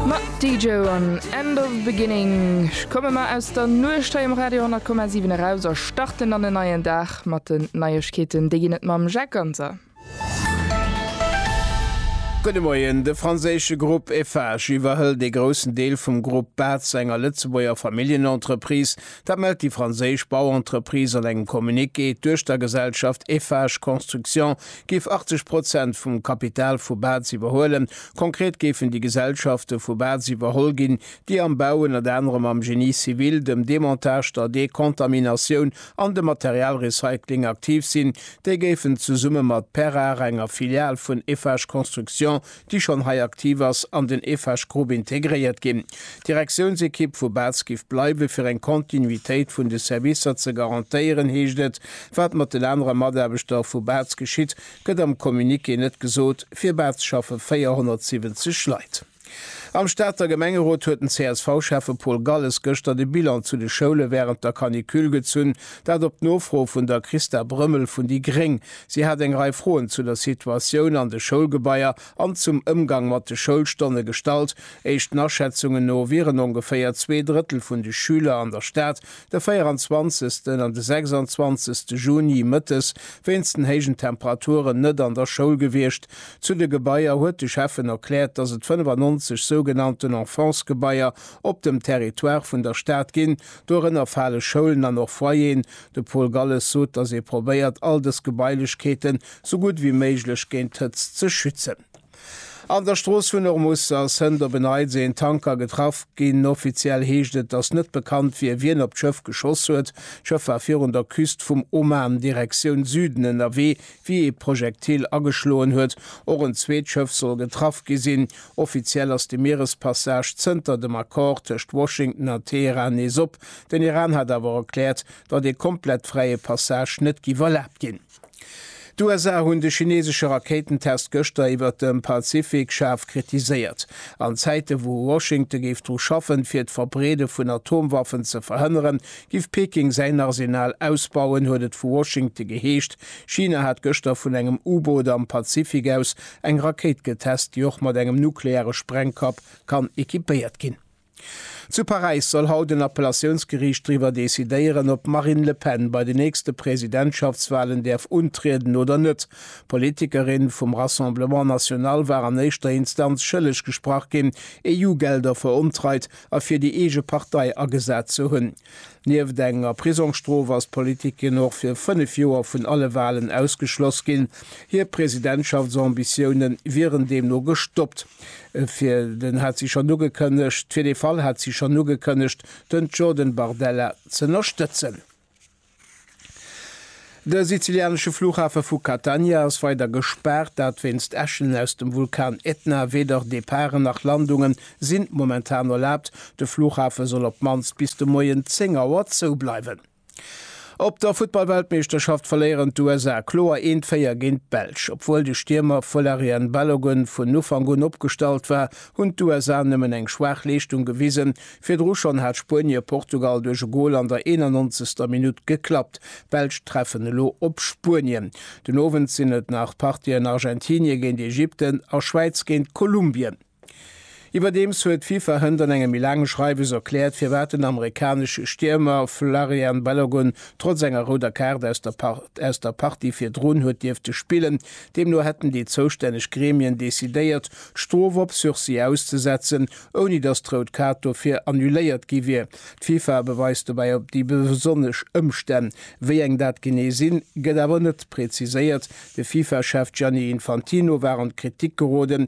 Ma Dijo an End of Beginning komme mer aus der Nuecht hei um Radio 10,7 eraus a starten an en neien Dag mat den Neiegkeeten. Déi ginn et mam Jacques Ganser. Gudde Moien, De franséische Grupp Eiffage iwwerhëlt ee groussen Deel vum Grupp Batz, enger Lëtzebuerger Familljenentreprise. Dat mellt déi franséisch Bauentreprise an engem Communiqué. D'Duechtergesellschaft Eiffage Construction géif 80 Prozent vum Kapital vu Baz iwwerhuelen. Konkret géifen déi Gesellschafte vu Baz iwwerholl ginn, déi am Bau, ënnert anerem am Génie civil, dem Demontage, der Dekontaminatioun an dem Materialrecycling aktiv sinn. Déi géifen zesumme mat Perrar, enger Filial vun Eiffage Construction, déi schonn hei aktiv ass, an den Eiffage Group integréiert ginn. D'Direktiounsekipp vu Balz giff bleiwen, fir eng Kontinuitéit vun de Servicer ze garantéieren, heescht et. Wat mat den anere Mataarbechter vu Balz geschitt, gëtt am Communiqué net gesot. Fir Balz schaffe 470 Leit. Am Stater Gemengerot huet den CSV-Schäffe Paul Galles gëschter de Bilan zu de Schoule wärend der Canicule gezunn, dat op d'Nofro vun der Christa Brömmel vun déi gréng. Si hat eng Rei Froen zu der Situatioun an de Schoulgebaier an zum Ëmgang mat de Schoulstonne gestallt. Éischten Aschätzungen no wieren ongeféier zwee Drëttel vun de Schüler an der Stad de 24 an de 26 Juni mëttes wéinst den héijen Temperaturen net an der Schoul gewiescht. Zu de Gebaier huet de Schäffen erkläert, dass et 95 sougenannten Enfance-Gebaier op dem Territoire vun der Stad ginn. Dorënner fale Schoulen an och Foyeren, De Paul Galles sot, datt ee probéiert, all dës Gebailechkeeten sou gutt wéi méiglech géint d'Hëtzt ze schützen. An der Strooss vun Ormuz ass Hënt op e Neits een Tanker getraff ginn. Offiziell heescht et, datt net bekannt wier, wien op d'Schëff geschoss huet. D'Schëff war virun der Küst vum Oman, Direktioun Süden, ënnerwee, wéi ee Projektil ageschloen huet. Och en zweet Schëff soll getraff gi sinn. Offiziell ass de Mierespassage zënter dem Accord tëscht Washington a Teheran nees op. Den Iran hat awer erkläert, datt ee komplett fräie Passage net giff erlaabt ginn. D'USA hunn de chinesesche Rakéitentest gëschter iwwert dem Pazifik schaarf kritiséiert. An Zäite wou Washington géif dru schaffen, fir d'Verbreede vun Atomwaffen ze verhënneren, giff Peking säin Arsenal ausbauen, huet et vu Washington geheescht. China hat gëschter vun engem U-Boot am Pazifik aus eng Rakéit getest, déi och mat engem nukleare Sprengkapp kann equipéiert ginn. Zu Paräis soll haut en Appellatiounsgeriicht driwwer decidéieren, ob d'Marine Le Pen bei den nächste Presidentschaftswalen däerf untrieden oder net. D'Politikerin vum Rassemblement National war an éischter Instanz schëlleg gesprach ginn, EU-Gelder verontreit a fir déi eege Partei agesat ze hunn. Nieft enger Prisongsstrof ass d'Politikerin och fir fënnef Joer vun alle Walen ausgeschloss ginn. Hir Presidentschaftsambitioune wieren deemno gestoppt. Fir den hat si schonn ugekënnegt, fir dee Fall hat si schonn ugekënnegt, den Jordan Bardella z'ënnerstëtzen. De sizilianesche Flughafe vu Catania ass weider gespaart, dat wéinst Äschen aus dem Vulkan Etna. Weder Departen nach Landungen sinn momentan erlaabt. De Flughafe soll op d'mannst bis de Moien 10 Auer zoubleiwen. Op der Futtballweltmeeschterschaft verléieren d'USA kloer 1-4 géint d'Belsch. Obwuel de Stiermer Folarin Balogun vun Ufank un opgestallt war, hunn d'USA nëmmen eng schwaach Leeschtung gewisen. Virdru schonn hat Spuenie Portugal duerch e Gol an der 91. Minutt geklappt. D'Belsch treffen elo op Spuenien. Den Owend sinn et nach d'Partiën Argentinie géint Ägypten a Schwäiz géint Kolumbien. Iwwerdeems huet d'FIFA hënt an engem méi laange Schreiwes erkläert, firwat den amerikanesche Stiermer Folarin Balogun trotz enger rouder Kaart aus der aus der Partie virdrun huet dierfte spillen. Deemno hätten déi zoustänneg Gremien decidéiert, d'Strof op Sursis auszesetzen, ouni datt d'Rout Kaart dofir annuléiert gi wier. D'FIFA beweist dobäi op déi besonnesch Ëmstänn. Wéi eng dat genee sinn, gëtt awer net preziséiert. De FIFA-Chef Gianni Infantino war an d'Kritik geroden,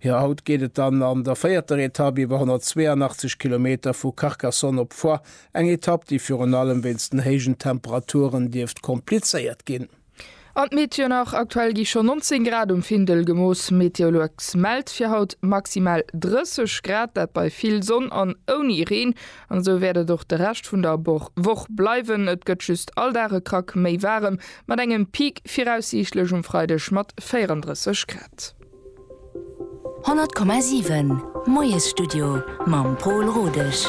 Jo, haut geet et dann an der véierter Etapp iwwer 182 Kilometer vu Carcassonne op Foix, eng Etapp, déi virun allem wéinst den héijen Temperaturen dierft komplizéiert ginn. An d'Meteo nach, Aktuell gi schonn 19 Grad um Findel gemooss. Meteolux mellt fir haut maximal 30 Grad, dat bei vill Sonn an ouni Reen. An esou wäert et och de Rescht vun der Woch bleiwen, et gëtt just all Dag e Krack méi waarem, mat engem Peak viraussiichtlech um Freideg mat 34 Grad. Honnert Komma siwen, Moiesstudio mam Pol Rodesch.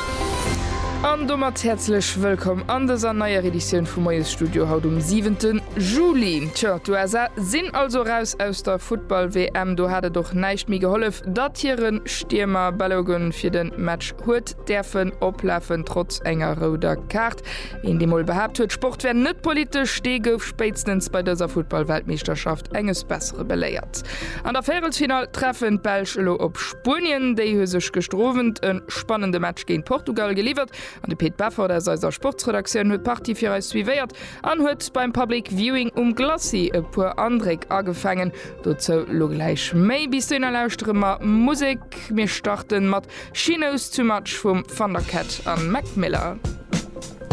An domat häerzlech wëllkomm an dëser neier Editioun vum Moiesstudio haut um siwente Juli. Tjo, d'USA sinn also eraus aus der Futtball-WM. Do hat et och näischt méi gehollef, datt hire Stiermer Balogun fir de Match huet däerfen oplafen, trotz enger rouder Kaart. Een dee mol behaapt huet Sport wär net politesch, dee gouf spéitstens bei dëser Futtball-Weltmeeschterschaft enges Bessere beléiert. An der Véierelsfinall treffen d'Belsch elo op Spuenien. Déi hu sech gëschter Owend e spannende Match géint Portugal geliwwert an de Pit Beffort aus eiser Sportsredaktioun huet d'Partie fir eis suivéiert an huet beim Public Viewing um Glacis e puer Andréck agefaangen. Dozou lo gläich méi. Bis dohinner lauschtere mer Musek. Mir starten mat She Knows Too Much vum Thundercat an Mac Miller.